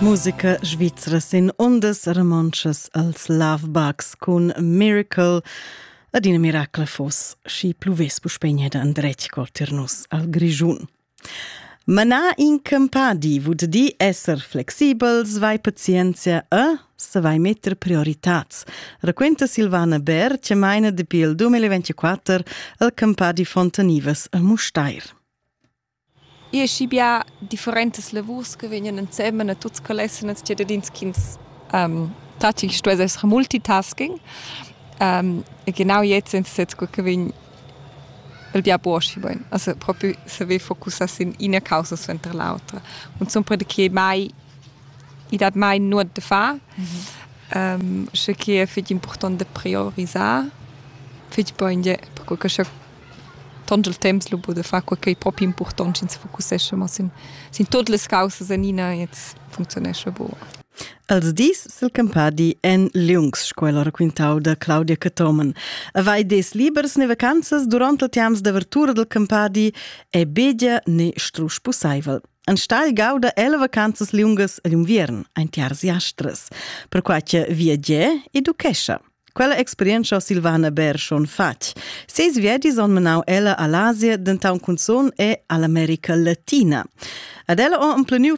Musica svizra sin ondas romontschas als Lovebugs cun Miracle ad ina miracla fos schi pluvess puspegna da andretg cotir nus al Grischun. Manar in campadi vud di esser flexibel, svai pazienzia e savai metter prioritats. Raquenta Silvana Ber, che maina dapi il 2024 al campadi Fontanivas a Mustair. I es schi bia differentas lavurs che vegnan ensemen a tuots quels esseners ciadadins chi'ns tacci chi stuess esser multitasking. e genau jetzt sind es jetzt cur che vegn il bia buoschi bain. Also propi saver focussar sin ina causa suenter l'autra. Cunzunt perche mai i dat mai nuot da far. sche que è fich important da priorisar, fich bain per co che scha tont il temps lu buca de far quei ch'ei propi impurtont sch'ins focussescha mo sin, sin tut las caussas enina jetzt functionescha buca. Els dis sil campadi en liungs sco'la raquintau da Claudia Cathomen. Vai des libers ne vacanzas duront il tiams d'avertura del campadi è begia ne strusch pussaivel. Enstagl gauda ella vacanzas liungas agl unviern, ein tiars jastras, perquai che viagia educhescha. Quella experientscha Silvana Bär schon fatg. Ses viadis han menau ella all'Asia, denton cunzun e all'America Latina. Ad ella ho empleniu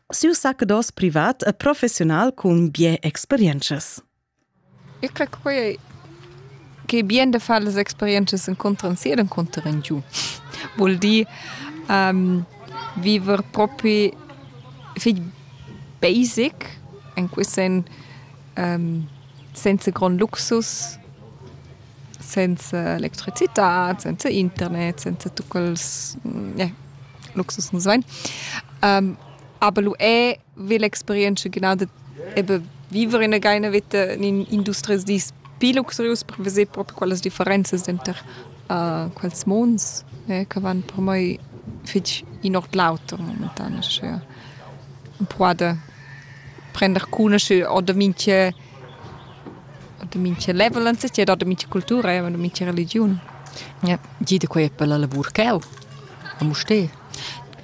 siu saccados privat e professional cun bien experiences. Eu creo que che bien de fare le experiences incontran sia incontran giù. Vuol dire um, vivere proprio fig basic in questo um, senza grond luxus, senza electricitad, senza internet, senza tut quels yeah, luxus nus vain. Um, aber lu è ve l'experienza genau de eben vivere in eine Wette in industries di più luxurius per vedere proprio quelle differenze dentro uh, quels monds eh, che vanno per me fitch in ord l'auto momentan, cioè un po' de prender cunoscere oder minche oder minche level anzeiger oder minche cultura oder minche religiun ja gida quei per la lavur cheu a Musté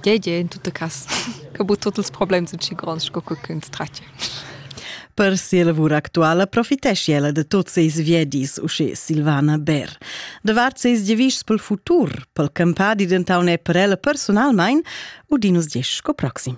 Gei gei in tutta cas che bu tutti ils problemi sun schi gronds sco co ch'ins tratga Per sia lavur actuala profitesci ella da tot seis viedis, usche Silvana Bär. Davart seis giavischs pel futur, pel campadi dentau ne per ella personalmein, udinus diesch sco proxim.